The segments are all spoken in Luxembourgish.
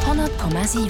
100,7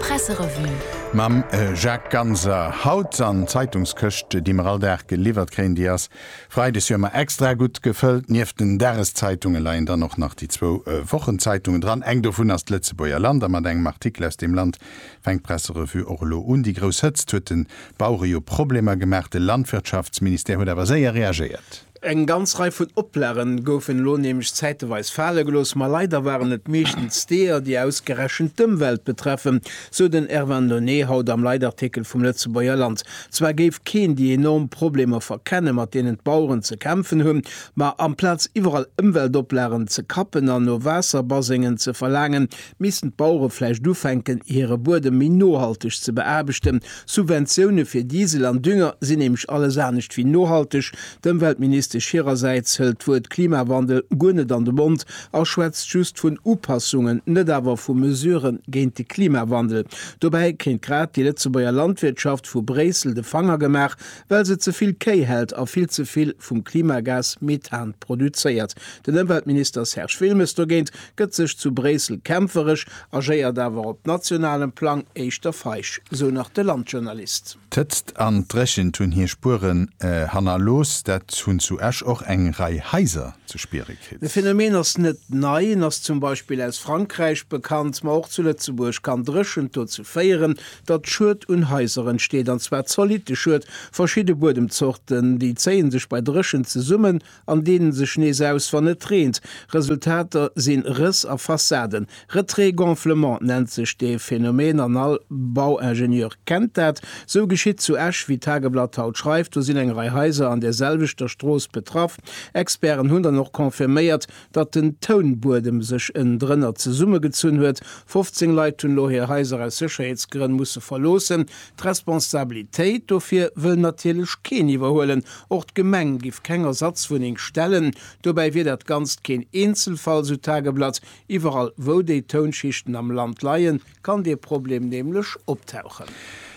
Presserevue. Mam Jacques Ganser haut an d'Zeitungskëscht, déi mer all Dag geliwwert kréien. Déi ass freides jo ëmmer extra gutt gefëllt. Nieft den Dageszeitungen leien dann och nach déi zwou Wochenzeitungen dran. Eng dovun ass d'Lëtzebuerger Land a mat engem Artikel aus deem Land fänkt d'Presserevue och elo un. Déi grouss Hëtzt huet de Bauere jo Problemer gemaach. De Landwirtschaftsministère huet awer séier reagéiert. Eng ganz Rei vun Oplagen goufen elo nämlech zäiteweis fale gelooss, ma leider waren et meeschtens deeër, déi ausgerechent d'Ëmwelt betreffen, sou den Ervin Nonnet haut am Leitartikel vum Lëtzebuerger Land. Zwar géif keen déi enorm Problemer verkennen, mat deenen d'Baueren ze kämpfen hunn, ma amplaz iwwerall Ëmweltoplagen ze kappen an no Waasserbasengen ze verlaangen, Missten d'Bauere vläicht ufänken, hire Buedem méi nohalteg ze beaarbechten? Subventioune fir Diesel an Dünger sinn nämlech alles anescht wéi nohalteg. D'Ëmweltministesch hirersäits hëlt d'Wuert Klimawandel guer net an de Mond a schwätzt just vun Upassungen, net awer vu Mesurë géint de Klimawandel. Dobäi kéint grad déi Lëtzebuerger Landwirtschaft vu Bréissel de Fanger gemaach, well se ze vill Kéi hält a vill ze vill vum Klimagas Methan produzéiert. Den Ëmweltminister Serge Wilmes dogéint gëtt sech zu Bréissel kämpferesch, agéiert awer op nationalem Plang éischter feig, sou nach de Landjournalist. D'Hëtzt an d'Dréchent hunn hir Spueren hannerlooss, dat hunn zu Esch och eng Rei Haiser ze spiere kritt. De Phenomen ass net nei, en ass zum Beispill aus Frankräich bekannt. Ma och zu Lëtzebuerg kann Dréchent dozou féieren, datt Schued un Haiser entsteet, an zwar zolitte Schued. Verschidde Buedemzorten, déi zéie sech bei Dréchent zesummen an deenen sech nees aus wann et reent. Resultater si Rëss a Fassaden. Retrait-gonflement nennt sech dee Phänomen an all Bauingenieur kennt dat. Sou geschitt zu Esch, wéi d'Tageblatt haut schreift. Do sinn eng Rei Haiser an där selwechter Strooss betraff. Experten hunn dann och confirméiert, datt den Tounbuedem sech ënnendrënner zesummegezunn huet. 15 Leit hunn elo hir Haiser aus Sécherheetsgrënn musse verloossen. D'Responsabilitéit dofir wëll natierlech keen iwwerhuelen. Och d'Gemeng giff keng Ersatzwunneng stellen. Dobäi wier dat Ganzt keen Eenzelfall, sou d'Tageblatt. Iwwerall, wou déi Tounschichten am Land leien, kann dee Problem nämlech optauchen.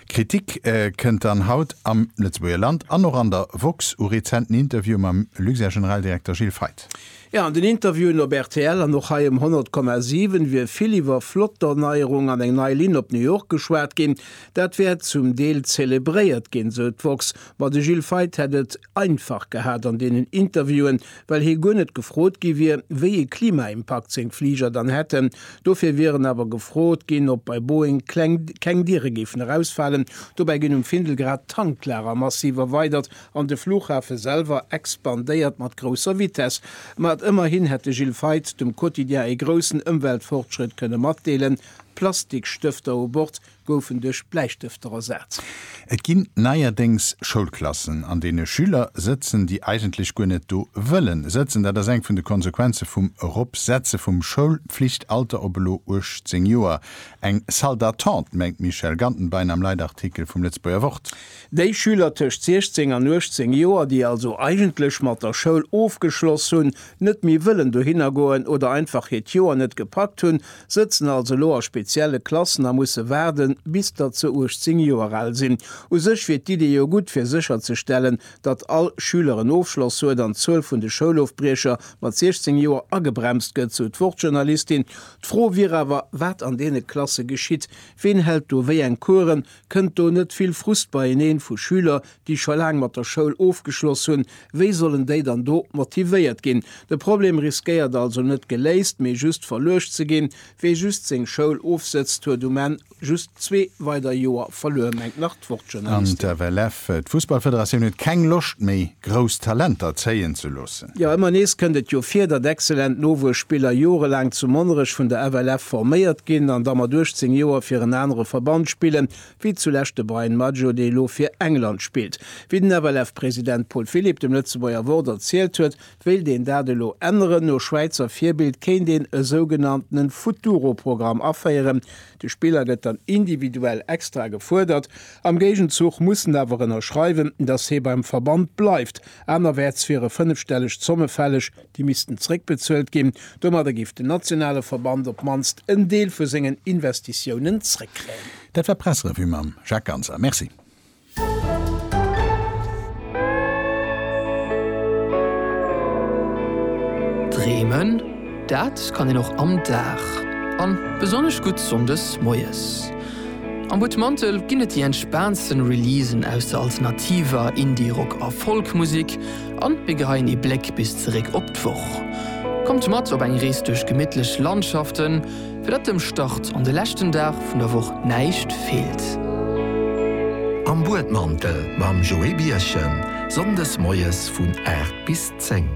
Kritik kënnt dann haut am Lëtzebuerger Land an och an der woxx u rezenten Interviewe mam Luxair-Generaldirekter Gilles Feith. Jo, an den Interviewen op rtl an och hei um 100,7 wier vill iwwer flott Dornéierung an eng nei Linn op New York geschwat ginn. Dat wär zum Deel zelebréiert ginn, sou d'woxx. Ma de Gilles Feith hätt et einfach gehat an deenen Interviewen, well hie guer net gefrot gi wier, wéi ee Klimaimpakt seng Fliger dann hätten. Dofir wieren awer gefrot ginn, ob bei Boeing keng Diere géifen erausfalen. Dobäi ginn um Findel grad Tanklager massiv erweidert. An de Flughafe selwer expandéiert mat grousser Vitess. Ma et ëmmerhin hätt de Gilles Feith dem Quotidien ee groussen Ëmweltfortschrëtt kënne matdeelen, D'Plastikstëfter u Bord goufen duerch Bläistëfter ersat. Et ginn neierdéngs Schoulklassen, an deene Schüler sëtzen, déi eigentlech guer net do wëllen sëtzen. Dat ass eng vun de Konsequenze vum Eropsetze vum Schoulflichtalter op elo 18 Joer. Eng Salle d'attente, mengt d'Michèle Gantenbein am Leitartikel vum Lëtzebuerger Wort. Déi Schüler tëscht 16 an 18 Joer, déi also eigentlech mat der Schoul ofgeschloss hunn, net méi wëllen dohinner goen oder einfach hiert Joer net gepackt hunn, sëtzen also elo a spezielle Klassen a musse waarden, bis datt se 18 Joer al sinn. U sech wier d'Idee jo gutt, fir sécherzestellen, datt all Schüler en Ofschloss huet an d'Zuel vun de Schoulofbriecher mat 16 Joer agebremst gëtt, sou d'Wort-Journalistin. D'Fro wier awer, wat an deene Klasse geschitt. Ween hält do wéi eng Coursen? Kënnt do net vill Frust beieneen vu Schüler, déi scho laang mat der Schoul ofgeschloss hunn? Wéi sollen déi dann do motivéiert ginn? De Problem riskéiert also net geléist, mee just verluecht ze ginn. Wee just seng Schoul ofsëtzt, huet um Enn just zwee weider Joer verluer, mengt nach d'Wort-Journalistin. An d'FLF, d'Fussballfederatioun, huet keng Loscht méi, grouss Talenter zéien ze loossen. Jo, ëmmer nees kënnt et jo vir, datt exzellent Nowuesspiller jorelaang zu Monnerech vun der FLF forméiert ginn an da mat 18 Joer fir en anere Verband spillen, wéi zulescht de Bryan Maggio, dee elo fir England spillt. Wéi den FLF-President Paul Philipp dem Lëtzebuerger Wort erzielt huet, wéilt een dat elo änneren. No Schwäizer Virbild kéint een e sougenanntene Futuro-Programm aféieren. De Spiller gëtt dann individuell extra gefuerdert. Am Géigenzuch muss en awer ënnerschreiwen, datt hee beim Verband bleift. Anerwäerts wiere fënnefstelleg Zomme fälleg, déi missten zréckbezuelt ginn. Domadder géif den nationale Verband op d'mannst en Deel vu sengen Investitiounen zréckkréien. Dat war d'Pressrevue mam Jacques Ganser. Merci. Dreemen, dat kann een och am Dag, an besonnesch gutt Sonndes moies. Am Buttmantel ginn et déi entspaantsten Releasen aus der alternativer, Indie-, Rock a Folk-Musek an mir geheien ee Bléck bis zeréck op d'Woch. Kommt mat op eng Rees duerch gemittlech Landschaften, fir datt dem Start an de leschten Dag vun der Woch näischt feelt. Am Buedmantel mam Joé Birchen, Sonndes moies vun 8 bis 10.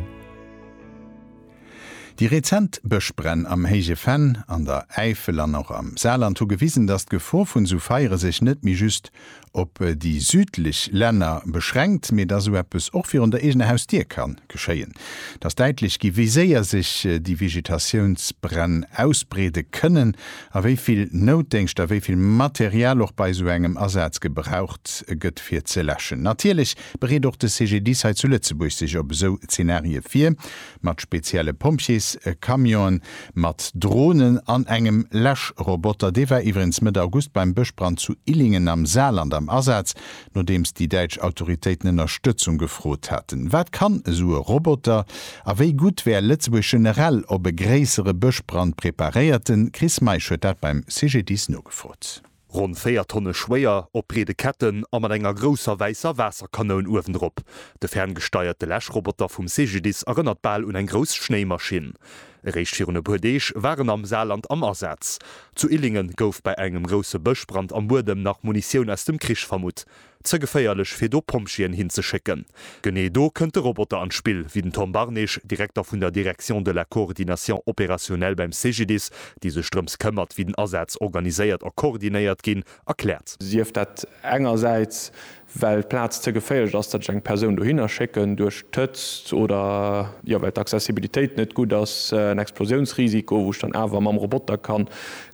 Déi rezent Bëschbränn am Héije Venn, an der Äifel an och am Saarland hu gewisen, datt d'Gefor vun esou Feiere sech net méi just op déi südlech Länner beschränkt, mee datt esou eppes och virun der eegener Hausdier ka geschéien. Et ass däitlech gi wéi séier sech déi Vegetatiounsbränn ausbreede kënnen a wéi vill Noutdéngscht a wéi vill Material och bei esou engem Asaz gebraucht gëtt fir ze läschen. Natierlech bereet och de CGDIS hei zu Lëtzebuerg sech op esou Zenarie vir. Mat spezielle Pompjees, Camionen, mat Dronen an engem Läschroboter, dee war iwwerens Mëtt August beim Bëschbrand zu Illingen am Saarland am Asaz, nodeems déi däitsch Autoritéiten Ënnerstëtzung gefrot haten. Wat kann esou e Roboter? A wéi gutt wär Lëtzebuerg generell op e gréissere Bëschbrand preparéiert? De Chris Meisch huet dat beim CGDIS nogefrot. Ronn 4 Tonne schwéier, op breede Ketten a mat enger grousser wäisser Waasserkanoun uewendrop. De ferngesteierte Läschroboter vum CGDIS erënnert bal un eng grouss Schnéimaschinn. Eréischt virun e puer Deeg war en am Saarland am Asaz. Zu Illingen gouf bei engem grousse Bëschbrand am Buedem nach Munitioun aus dem Krich vermutt. Ze geféierlech fir do Pompjeeën hin ze schécken. Genee do kënnt de Roboter an d'Spill, wéi den Tom Barnage, Direkter vun der Direction de la coordination opérationnelle beim CGDIS, déi sech drëms këmmert, wéi den Asaz organiséiert a koordinéiert ginn, erkläert. Sief dat engersäits, well d'Plaz ze geféierlech ass, datt ech eng Persoun dohinner schécken, duerch d'Hëtzt oder jo well d'Accessibilitéit net gutt ass, en Explosiounsrisiko, wou ech dann awer mam Roboter ka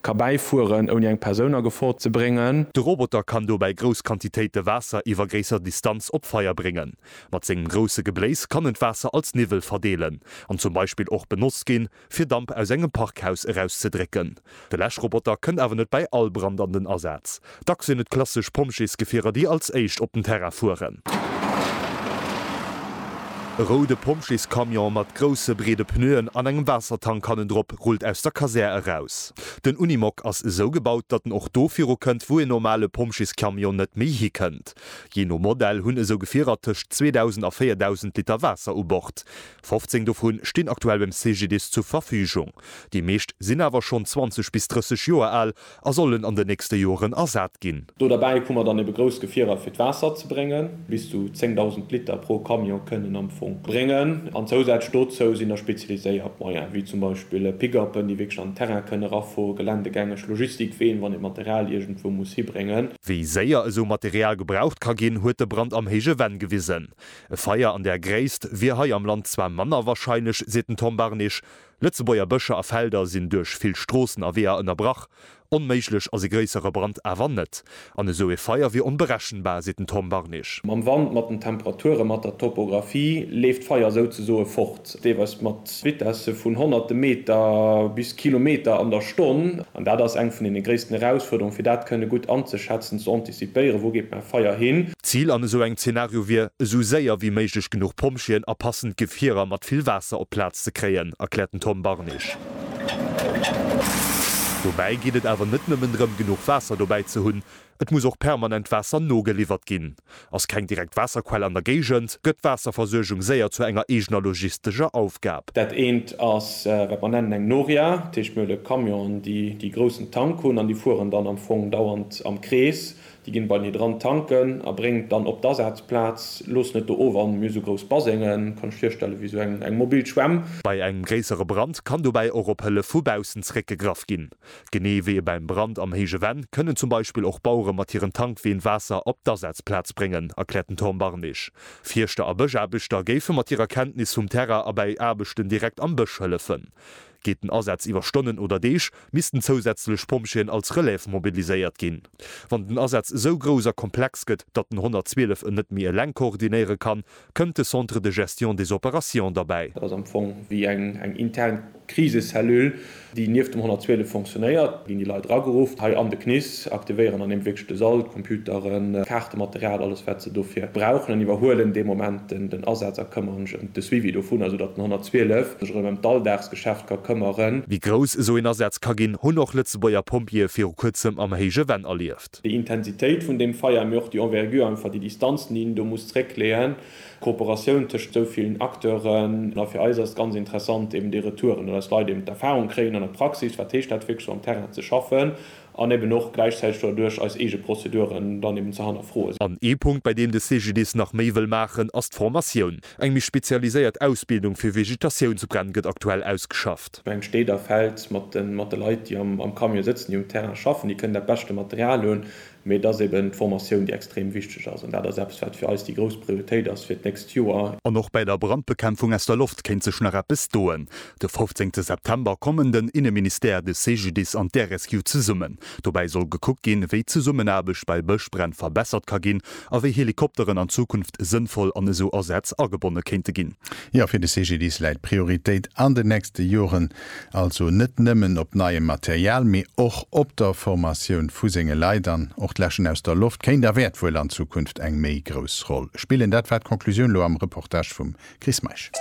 Ka bäifueren, ouni eng Persoun a Gefor ze bréngen. De Roboter kann dobäi grouss Quantitéite Waasser iwwer gréisser Distanz op Feier bréngen. Mat sengem grousse Gebléis kann en d'Waasser als Niwwel verdeelen an zum Beispill och benotzt ginn, fir Damp aus engem Parkhaus erauszedrécken. De Läschroboter kënnt awer net bäi all Brand an den Asaz. Dacks sinn et klassesch Pompjeesgefierer, déi als éischt op den Terrain fueren. E roude Pompjeescamion mat grousse, breede Pneuen an engem Waassertank hannendrop rullt aus der Kasär eraus. Den Unimog ass esou gebaut, datt en och do virukënnt, wou een normale Pompjeescamion net méi hikënnt. Jee no Modell hunn esou Gefierer tëscht 2.000 a 4.000 Liter Waasser u Bord. 15 dovu stinn aktuell beim CGDIS zur Verfügung. Déi meescht sinn awer schonn 20 bis 30 Joer al A sollen an den nächste Joeren ersat ginn. Do derbäi hu mer dann ebe grouss Gefierer fir d'Waasser ze bréngen. Bis zu 10.000 Liter pro Camion kënnen am Fong bréngen. An zousätzlech dozou sinn da spezialiséiert Moyen, wéi zum Beispill Pick-upen, déi wierklech an den Terrain kënnen erafueren, geländegängeg Logistikween, wann ee Material iergendwou muss hibréngen. Wéi séier esou Material gebraucht ka ginn, huet de Brand am Héije Venn gewisen. E Feier an där Gréisst wier hei am Land zwar manner warscheinlech, seet den Tom Barnich, Lëtzebuerger Bëscher a Felder sinn duerch vill Stroossen a Weeër ënnerbrach. Onméiglech ass e gréissere Brand awer net. An esou ee Feier wier onberechenbar, seet den Tom Barnich. Mam Wand, mat den Temperature, mat der Topographie leeft d'Feier souzesoe fort, deelweis mat Vitesse vun honnerte Meter bis Kilometer an der Stonn. An dat ass eng vun deene gréissten Erausfuerderunge fir dat kënne gutt anzeschätzen, ze anticipieren. Si d'Déieren, wou geet mäi Feier hin? D'Zil an esou engem Zenario wier, esou séier wéi méiglech genuch Pompjeeën a passend Gefierer mat vill Waasser op d'Plaz ze kréien, erkläert den Tom Barnich. Dobäi geet et awer net nëmmen drëm, genuch Waasser dobäi ze hunn, et muss och permanent Waasser nogeliwwert ginn. Ass keng direkt Waasserquell an der Géigend, gëtt d'Waasserversuergung séier zu enger eegener logistescher Aufgab. Dat eent ass, wat mer nennen eng Noria, dat heescht mir hunn e Camion an déi groussen Tank hunn an déi fueren dann am Fong dauernd am Krees, déi ginn bei mir dran tanken a bréngen et dann op d'Asazplaz, loossen et do of an mir esou grouss Basengen, kann lech virstellen wéi esou eng mobil Schwämm. Bei engem gréissere Brand kann dobäi och op Hëllef vu baussen zeréckgegraff ginn. Genee wéi e beim Brand am héije Venn, kënnen zum Beispill och Bauere mat hiren Tankween Waasser op d'Asazplaz bréngen, erkläert den Tom Barnig. Fierschter a Bëschaarbechter géife mat hirer Kenntnis vum Terrain a bäi Aarbechten direkt am Bësch hëllefen. Gétt den Asaz iwwer Stonnen oder Deeg, missten zousätzlech Pompjeeën als Relève mobiliséiert ginn. Wann den Asaz esou grouss a komplex gëtt, datt den 112 en net méi eleng koordinéiere kann, kënnt de Centre de gestion des opérations derbäi. Dat ass am Fong wéi eng intern Krisecellule, déi nieft dem 112 fonctionnéiert. Do ginn déi Leit erageruff, hei an de CNIS. ze aktivéieren an eben wierklech de Sall, d'Computeren, d'Kaartematerial, alles wat se dofir brauchen an iwwerhuelen dee Moment den Asaz a këmmere mech ëm de Suivi dovunner, esou datt den 112 sech erëm ëm d'Alldagsgeschäft ka këmmeren. Wéi grouss esou een Asaz ka ginn, hunn och Lëtzebuerger Pompjeeë viru kuerzem am héije Venn erlieft. Déi Intensitéit vun deem Feier, mee och déi Envergure, einfach déi Distanzen, déi een do muss zréckleeën, d'Kooperatioun tëscht esou villen Acteuren. A fir eis ass et ganz interessant eben déi Retouren, datt eis Leit eben d'Erfahrung kréien an der Praxis, wat heescht dat wierklech sou am Terrain ze schaffen, an eben och gläichzäiteg doduerch eis eege Prozeduren dann eben ze hannerfroen. An ee Punkt, bei deem de CGDIS nach méi wëll maachen, ass d'Formatioun. Eng méi spezialiséiert Ausbildung fir Vegetatiounsbränn gëtt aktuell ausgeschafft. Ech mengen, d'Stad a Feld mat de Leit, déi am Camion sëtzen, déi um Terrain schaffen, déi kënnen dat beschte Material hunn, mee et ass eben d'Formatioun, déi extrem wichteg ass. An dat ass eppes, wat fir eis déi grouss Prioritéit ass fir d'nächst Joer. An och bäi der Brandbekämpfung aus der Loft kéint sech nach eppes doen. De fofzéngte September kommen den Inneministère, de CGDIS an d'Air-Rescue zesummen. Dobäi soll gekuckt ginn, wéi d'Zesummenaarbecht bei Bëschbränn verbessert ka ginn a wéi Helikopteren an Zukunft sënnvoll an esou Asätz agebonne kéinte ginn. Jo, fir de CGDIS läit d'Prioritéit an den nächste Joren also net nëmmen op neiem Material, mee och op der Formatioun vu senge Leit. An och d'Läschen aus der Loft kéint a wäert wuel an Zukunft eng méi grouss Roll spillen. Dat war d'Conclusioun elo am Reportage vum Chris Meisch.